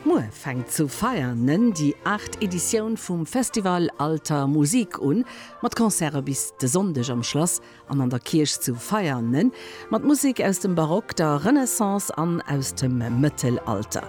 Muer fänkt zu Veianen déi aacht Editioun vum Festival Alter Musik un, mat Concerte bis de Sonndeg am Schlass an an der Kierch zu Veianen, mat Musek aus dem Barock, der Renaissance an aus dem Mëttelalter.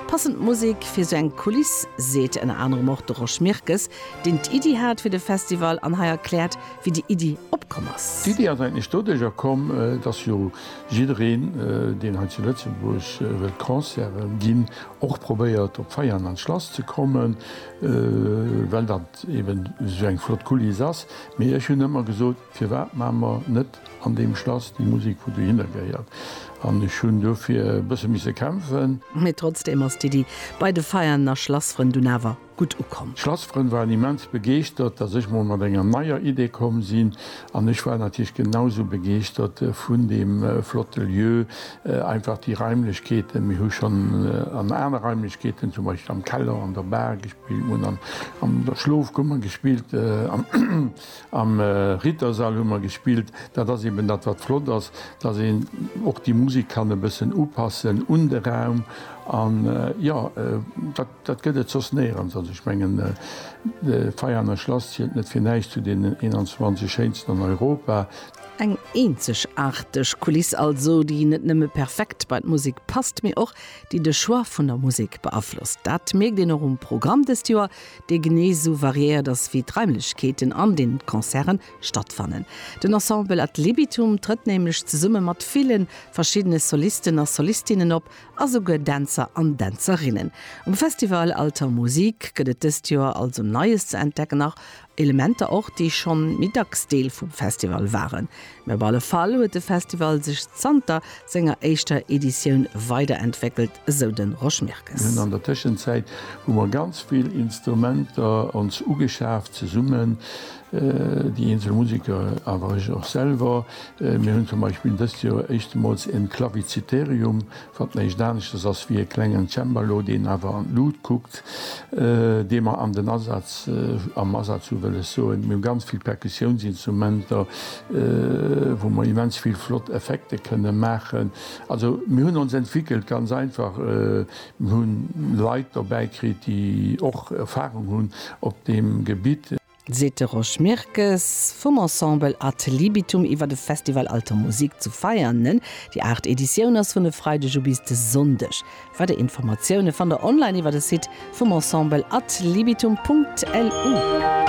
Passend Musek fir sou eng Kuliss, seet ënner anerem och de Rosch Mirkes, deen d'Iddi hat fir de Festival an hei erkläert, wéi déi Iddi opkomm ass. D'Iddi ass eigentlech doduercher komm, dass jo Jiddereen, deen hei zu Lëtzebuerg wëllt Concerten ginn, och probéiert op Veianen an d'Schlass ze kommen, well dat eben esou eng flott Kuliss ass. Mee ech hunn ëmmer gesot, firwat maache mer net an deem Schlass déi Musek wou dohinner gehéiert? An ech hunn dofir e bësse misse kämpfen. Mee trotzdeem ass d'Iddi bei de Veianener Schlassfrënn dunn awer gutt ukomm. D'Schlassfrënn waren immens begeeschtert, dass ech mol mat enger neier Idee komm sinn an ech war natierlech genau sou begeeschtert vun deem flotte Lieu. Einfach déi Raimlechkeeten, mir hu schonn an aner Raimlechkeeten, zum Beispill am Keller, an der Bar gespillt, mir hunn an der Schlofkummer gespillt, am Rittersall hu mer gespillt. Dat ass eben dat wat flott ass, dass een och déi Musek kann e bëssen upassen un de Raum an jo dat. Dat gëtt et soss néierens. Also ech mengen, de Veianer Schlass zielt net fir näischt zu den 21 schéinsten an Europa. Eng eenzegaarteg Kuliss also, déi net nëmme perfekt bei d'Musek passt, mee och déi de Choix vun der Musek beaflosst. Dat mierkt een och um Programm dëst Joer, dee genee esou variéiert ass wéi d'Raimlechkeeten, an deenen d'Concerten stattfannen. Den Ensemble Ad Libitum trëtt nämlech zesumme mat ville verschiddene Solisten a Solistinnen op, a souguer Dänzer an Dänzerinnen. Um Festival Alter Musik gëtt et dëst Joer also Neies ze entdecken a Elementer och, déi schonn méi dacks Deel vum Festival waren. Mee op alle Fall huet de Festival sech zanter senger éischter Editioun weiderentwéckelt, esou de Rosch Mirkes. Mir hunn an der Tëschenzäit hu mer ganz vill Instrumenter ons ugeschaaft zesummen. déi eenzel Museker awer ech och selwer. Mir hunn zum Beispill dëst Joer éischtemools en Claviciterium, wat näischt aneschters ass wéi e klengen Cembalo, deen awer an d'Lut kuckt, dee mer an den Asaz, am Asaz hu wëll ech soen. Mir hu ganz vill Perkussiounsinstrumenter, wou mer immens vill flott Effekte kënne maachen. Also mir hunn ons entwéckelt, ganz einfach. Mir hu Leit dobäi kritt, déi och Erfahrung hunn op deem Gebitt. seet de Rosch Mirkes vum Ensemble Ad Libitum iwwer de Festival Alter Musik zu Veianen. Déi aacht Editioun ass vun e Freideg u bis de Sonndeg. Weider Informatioune fannt der online iwwer de Site vum Ensemble ad libitum.lu.